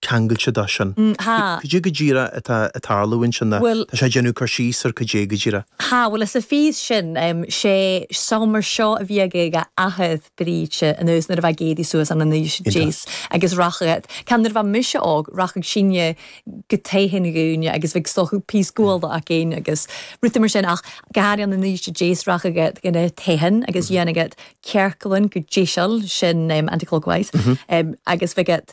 ceangailte dó sin. Ha! Cad é go díreach atá ag tarlú ansin? Bhuel. Tá sé ag déanamh cur síos ar cad é go díreach. Ha! Bhuel, is a fís sin, sé seomra seo a bhí ag a athair, Briege, anuas nuair a bheadh éadaí suas ann in Uibhist a Deas agus rachadh, ceann nuair a bheadh mise óg, rachadh sinne go tigh an ghúine agus bheadh stothadh píos gual do ach gin agus rudaí mar sin ach go háirithe ann in Uibhist a Deas rachadh go na tithin agus dhéanadh ciorcal ann go dtí sin anti-clockwise agus bheadh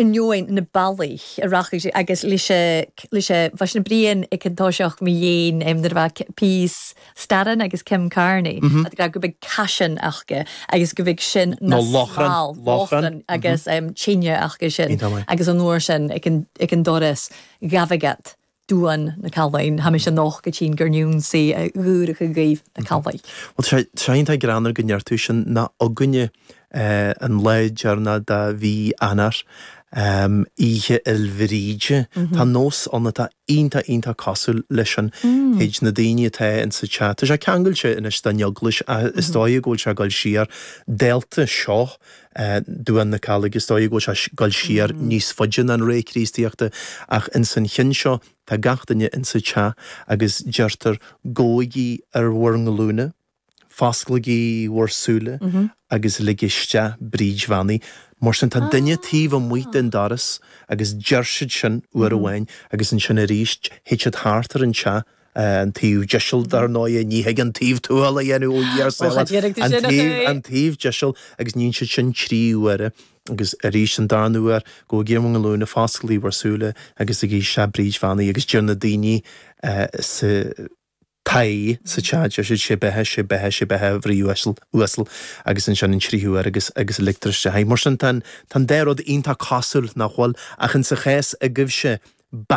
ainneoin na bealaí a rachaidh sé agus leis leis sé bheadh na Brian ag an toiseach mo dhéin em nuair a bheadh píos staran agus Kim Kearney a dtráth go mbeadh caisean acu agus go mbeadh sin na láithreán láithreán agus em tine acu sin agus an uair sin ag an ag an doras gabh agat Duan na Callaig. Tha mise nochd a' tighinn gur n-ionnsaigh a dh'ùrachadh dhuibh na Callaig. Bhuel, tá sé iontach greannmhar go ndeir tú sin nó againne an lá deireanach de mhí Eanáir, Oíche Fhéil Bríde. Tá nós ann atá iontach, iontach cosúil leis sin. Théid na daoine atá ins an teach, tá sé ceangailte anois den Eaglais ach is dóigh go bhfuil sé ag goil siar dálta seo Duan na Callaige, is dóigh go bhfuil sé ag goil siar níos faide ná an ré Chríostaíochta, ach ins an chionn seo tá gach duine ins an teach agus deirtear Gabhaigí ar bhur nglúine, fosclaigí bhur súile agus ligigí isteach Bríd Bheannaithe. Mar sin, tá duine taobh amuigh den doras agus deir siad sin uair amháin agus ansin aríst théid siad thart ar an teach, An taobh deiseal, dar ndóigh, ní thig an taobh tuathail a dhéanamh ó Dhia Ó, cha saor. déarfaidh tú An sin, a taobh, Ché! an taobh deiseal, agus níonn siad sin trí uaire, agus arís an darna uair, gabhaigí ar bhur nglúine, fosclaigí bhur súile agus ligigí isteach Bríd Bheannaithe, agus deir na daoine sa toigh, sa teach, deir siad sé beatha, sé beatha, sé beatha, a Bhríd uasal, agus ansin an tríú uair agus, agus ligtear isteach í. Mar sin, tá an, tá an dá rud iontach cosúil, nach bhfuil? Ach insa chás agaibhse, ba.